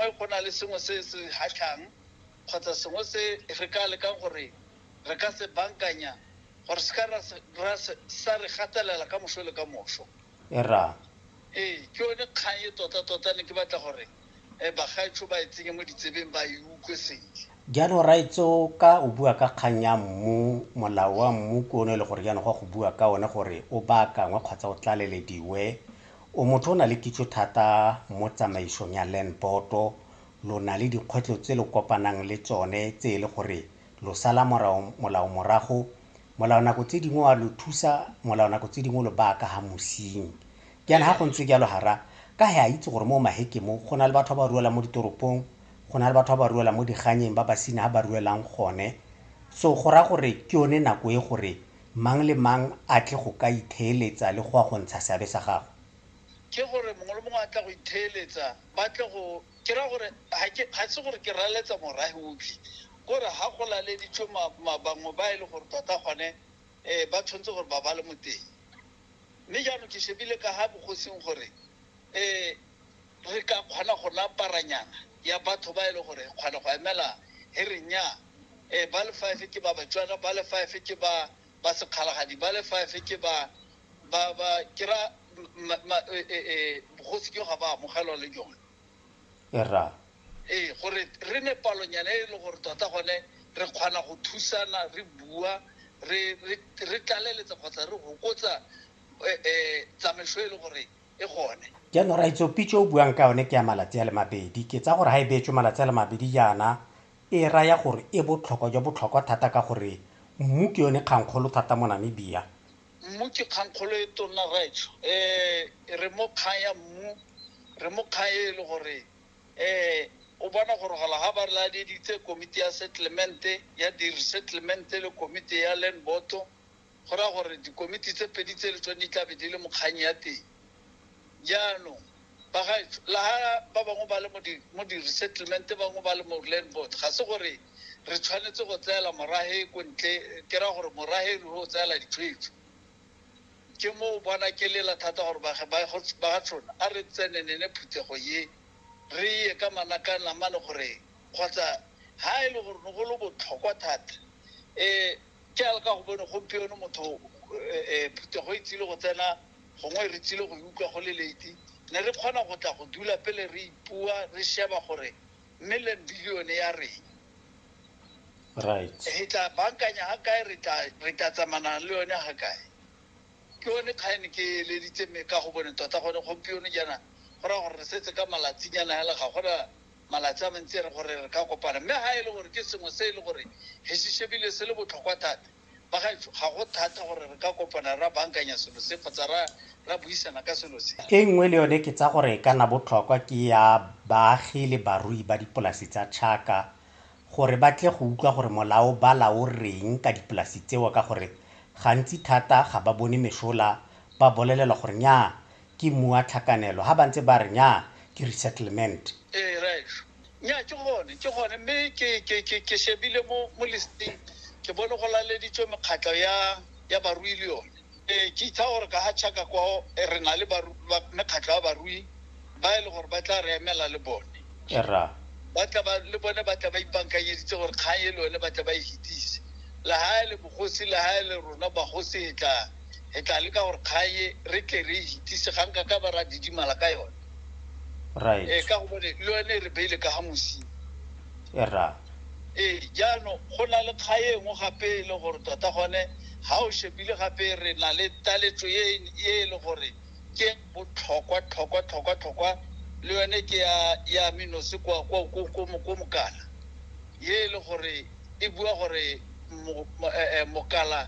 Fa go na le sengwe se se kgatlhang kgotsa sengwe se re ka lekang gore re ka se bankanya gore se ka ra sa re gatelela ka moso le ka moso. Erra. Ee, ke yone kgang e totatota ne ke batla gore bagaetsho ba e tsenye mo ditsebeng ba e utlwe sentle. Jaanong Raetso ka o bua ka kgang ya mmu, molao wa mmu ke one e le gore jaanong go ya go bua ka one gore o baakangwe kgotsa o tlalelediwe, O motho o na le kitso thata mo tsamaisong ya land board-o, lo na le dikgwetlho tse lo kopanang le tsone tse e le gore lo sala molao morago, molao nako tse dingwe wa lo thusa, molao nako tse dingwe lo baya ka ha mosing. Jaana ha go ntse jalo hara ka he a itse gore mo Maheke mo go na le batho ba ba ruelang mo ditoropong, go na le batho ba ba ruelang mo diganyeng ba basina ha ba ruelang gone. So go raya gore ke yone nako e gore mang le mang a tle go ka itheeletsa le go a go ntsha seabe sa gagwe. Ke gore mongwe le mongwe a tla go itheeletsa, ba tle go, ke raya gore ga ke, ga se gore ke raletsa morahi otlhe, kore ga go laleditswe ma, ma, bangwe ba e le gore tota gone um ba tshwanetse gore ba ba le mo teng. Mme jaanong ke shebile ka ga bogosing gore um. re ka kgona go nna paranyana ya batho ba e le gore kgona go emela he re nyaa ee ba le five ke ba batswana ba le five ke ba ba sekgalagadi ba le five ke ba ba ba ke ra bogosi ke ga ba amogelwa le jone e ra ee gore re ne palonyana e le gore tota gone re kgona go thusana re bua re re re tlaleletsa kgotsa re gokotsa um tsamaiso e le gore e gone jaanong raitso pitse o buang ka yone ke ya malatsi a le mabedi ke tsa gore ga e beetswe malatsi a le mabedi jaana e raya gore e botlhokwa jwa botlhokwa thata ka gore mmu ke yone kgankgolo thata mo namibia mmu ke kgankgolo e tonna raitso um eh, re mo kgang ya mmu re mo kgang e e le gore um o bona gore gola ga ba re ladeditse komiti ya settlemente ya di-resettlemente le komiti ya land boto Go raya gore dikomiti tse pedi tse le tsone di tla be di le mo kgang ya teng. Jaanong, bagaetsho, le ha ba bangwe ba le mo di, mo di-resettlement, bangwe ba le mo land board, ga se gore re tshwanetse go tseela morage ko ntle, ke ra gore morage re o tseela ditshwetso. Ke mo o bona ke lela thata gore bage- ba- go- ba ga tshona a re tsenenene phuthego ye re ye ka manakang namane gore kgotsa ha e le gore ne go le botlhokwa thata um Jaaka go bone gompieno motho phuthego e tsile go tsena, gongwe re tsile go e utlwa go le late, ne re kgona go tla go dula pele re ipua, re sheba gore million billion-e ya reng. Right. Re tla bankanya ha kae, re tla re tla tsamana le yone ha kae. Ke yone kgang e ne ke eleditse me ka go bone tota gone gompieno jaana go raya gore re setse ka malatsinyana hela ga gona malatsi a mantsi re gore re ka kopana. Mme ha e le gore ke sengwe se e le gore re se shebile se le botlhokwa thata, bagaetsho, ga go thata gore re ka kopana ra bankanya selo se kgotsa ra, ra buisana ka selo se. E nngwe le yone ke tsa gore e ka nna botlhokwa ke ya baagi le barui ba dipolasi tsa tšhaka, gore ba tle go utlwa gore molao ba la o reng ka dipolasi tseo, ka gore gantsi thata ga ba bone mesola, ba bolelelwa gore nnyaa, Ke mmu wa tlhakanelo. Ha ba ntse ba re, Nnyaa, ke resettlement. Ee, Reg. Nnyaa, ke gone, ke gone. Mme ke, ke, ke, ke shebile mo, mo listeng, ke bone go laleditswe mekgatlho ya, ya barui le yone. Ee, ke itsa gore ka ga Chaka kwao, re na le baru, ba, mekgatlho ya barui ba e le gore ba tla re emela le bone. Rra. Ba tla ba, le bone ba tla ba ipankanyeditse gore kgang e le yone ba tle ba e fetise. Le ha e le bogosi, le ha e le rona bagosi, e tla. re tla leka gore kgae re tle re itise ga nka ka ba ra didimala ka yone right ee ka gobane le yone re beile ka ga mosimo e ra ee jaanong go na le kgae e nngwe gape e le gore tota gone ga o shebile gape re na le taletso e e le gore ke botlhokwa tlhokwa tlhokwa tlhokwa le yone ke ya ya menose kwa kwa kwa kwa mo- kwa mokana ye e le gore e bua gore mokala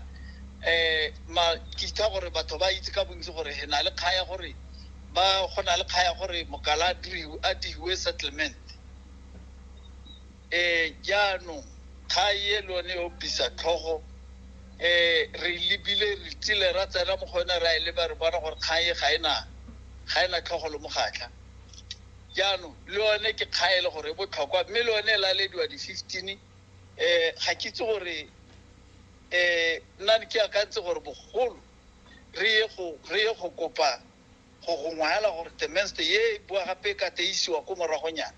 um makitha gore batho ba itse ka bontsi gore he na le kga ya gore ba go na le kga ya gore mokala a diwe settlement um jaanong kga ye le one yo bisa tlhogo eh re lebile re tsile ra tsena mo go yone ra e leba re bona gore kgang e ga ena ga ena tlhogo le mogatlha jaanong le yone ke kga e le gore e botlhokwa mme le yone e lalediwa di-fifteen um ga ke itse gore um nna ke akantse gore bogolo re ye go re ye go kopa go gongwaela gore the menste ye e bua gape e ka teisiwa ko moragonyana